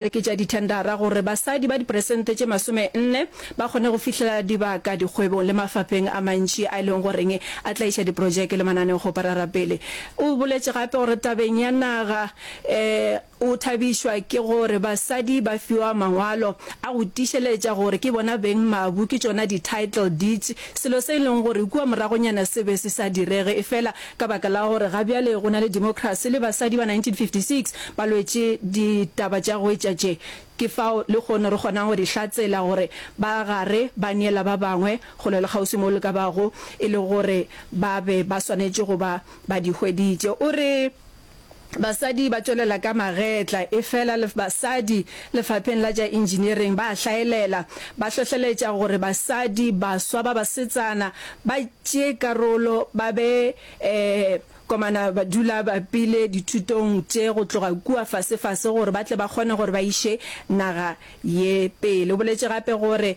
oketša dithendara gore basadi ba diperesente tše masome nne ba kgone go fihlelela dibaka dikgwebong le mafapheng a mantši a e leng goreng a tlaiša diprojeke le mananeo go parara pele. O boletše gape gore tabeng ya naga o thabišwa ke gore basadi ba fiwa mangwalo a go tiišeletša gore ke bona beng mabu ke tšona di-title deeds, selo se e leng gore kua moragonyana se be se sa direge efela Ka baka la gore ga bjale go na le democracy le basadi ba 1956 ba lwetše ditaba tša go etša tše, ke fao lekgono re kgonago go di hlatsela gore ba gare ba neela ba bangwe kgole le kgauswi moo le ka bago e le gore ba be ba swanetše go ba ba di hweditše. O re. Basadi ba tšwelela ka magetla, efela basadi lefapheng la tša engineering ba a hlaelela. Ba hlohleletša gore basadi baswa ba basetsana ba tšee karolo, ba be ee, komana badula pele dithutong tše go tloga kua fase-fase gore ba tle ba kgone gore ba iše naga ye pele. O boletše gape gore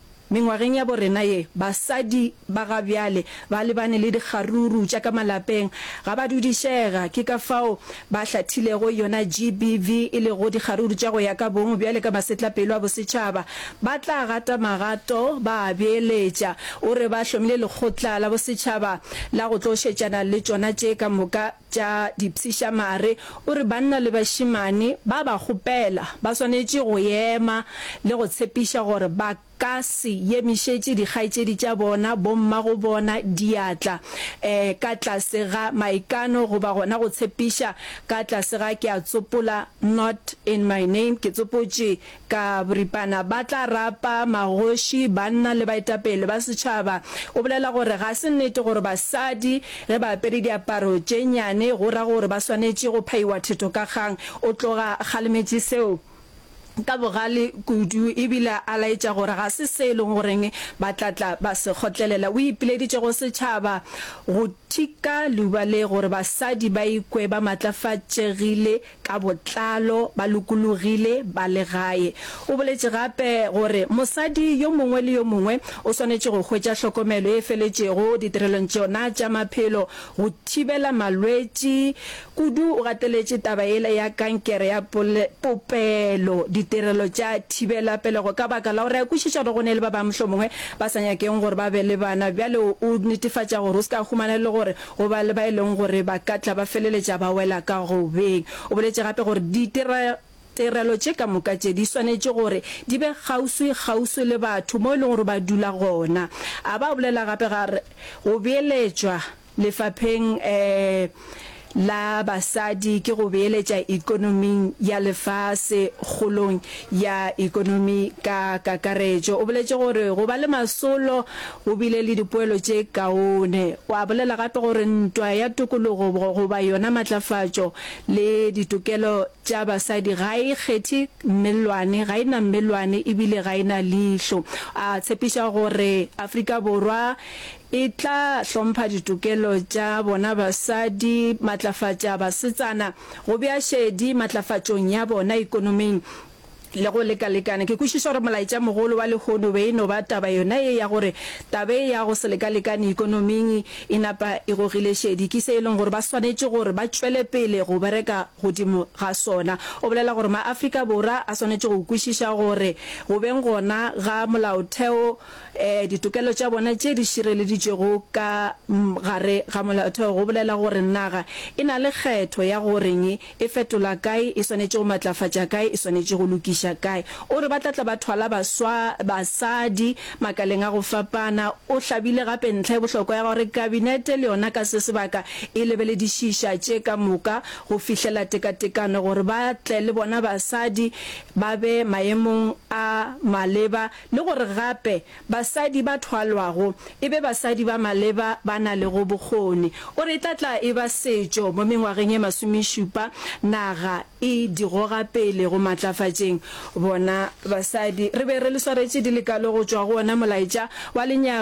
Mengwageng ya bo rena ye, basadi ba ga bjale ba lebane le dikgaruru tša ka malapeng. Ga ba dudišega, ke ka fao ba hlathilego yona GBV, e lego dikgaruru tša go ya ka bong. Bjale ka masetlapelo a bosetšhaba, ba tla gata magato ba a beeletša. O re ba hlomile lekgotla la bosetšhaba la go tlo šetšana le tšona tše ka moka. tša dipshišamare, o re banna le bašemane ba ba kgopela ba swanetše go ema le go tshepiša gore ba ka se yemišetše dikgaetšedi tša bona, bomma go bona, diatla um ka tlase ga maikano goba gona go tshepiša ka tlase ga ke a tsopola not in my name, ke tsopotše Ka boripana ba tla rapa magoši, banna le baetapele ba setšhaba. O bolela gore ga se nnete gore basadi ge ba apere diaparo tše nnyane go ra gore ba swanetše go phaiwa thetokakgang. O tloga kgalemetše seo ka bogale kudu ebile a laetša gore ga se se e leng gore ba tla tla ba se kgotlelela. O ipileditše go setšhaba go thika leuba le gore basadi ba ikwe ba maatlafatšegile ka botlalo ba lokologile ba le gae. O boletše gape gore mosadi yo mongwe le yo mongwe o swanetše go hwetša hlokomelo e feletšego ditirelong tšona tša maphelo go thibela malwetši, kudu o gateletše taba yela ya kankere ya popelo, ditirelo tša thibela pelego ka baka la gore a kwešiša gore go ne le ba bangwe mohlomongwe ba sa nyakeng gore ba be le bana. Bjale o netefatša gore o se ka humana e le gore Go ba le ba e leng gore ba ka tla ba feleletša ba wela ka go beng. O boletše gape gore ditirelo tše ka moka tše di swanetše gore di be kgauswikgauswi le batho moo e lego gore ba dula gona. A ba a bolela gape ga re go beeletšwa lefapheng la basadi ke go beeletša ikonoming ya lefase kgolong ya ikonomi ka kakaretšo. O boletše gore go ba le masolo go bile le dipoelo tše kaone. O a bolela gape gore ntwa ya tokologo goba yona matlafatšo le ditokelo tša basadi ga e kgethe mmellwane, ga e na mmellwane e bile ga e na leihlo. A tshepiša gore Afrika Borwa E tla hlompha ditokelo tša bona basadi, matlafatša basetsana, go bea šedi matlafatšong ya bona ekonoming le go lekalekana. Ke kwešiša gore molaetšamogolo wa lehono be e no ba taba yona ye ya gore taba ye ya go se lekalekane ekonoming e napa e gogile šedi. Ke se e leng gore ba swanetše gore ba tšwele pele go bereka godimo ga sona. O bolela gore ma-Afrika Borwa a swanetše go kwešiša gore go beng gona ga molaotheo Ee, ditokelo tša bona tše di šireleditšwego ka gare ga Molaotheo go bolela gore naga e na le kgetho ya go reng, e fetola kae, e swanetše go matlafatša kae, e swanetše go lokiša kae. O re ba tla tla ba thwala baswa, basadi, makaleng a go fapana. O hlabile gape ntlha e bohlokwa ya gore Kabinete le yona ka se sebaka e lebeledišiša tše ka moka go fihlela tekatekano gore ba tle le bona basadi ba be maemong a maleba le gore gape basadi ba thwalwago e be basadi ba maleba ba na lego bokgoni. O re e tla tla e ba setšo mo mengwageng e masomešupa naga e di goga pele go matlafatšeng bona basadi. Re be re le swaretše di le kalo go tšwa go ona molaetša wa lenyaga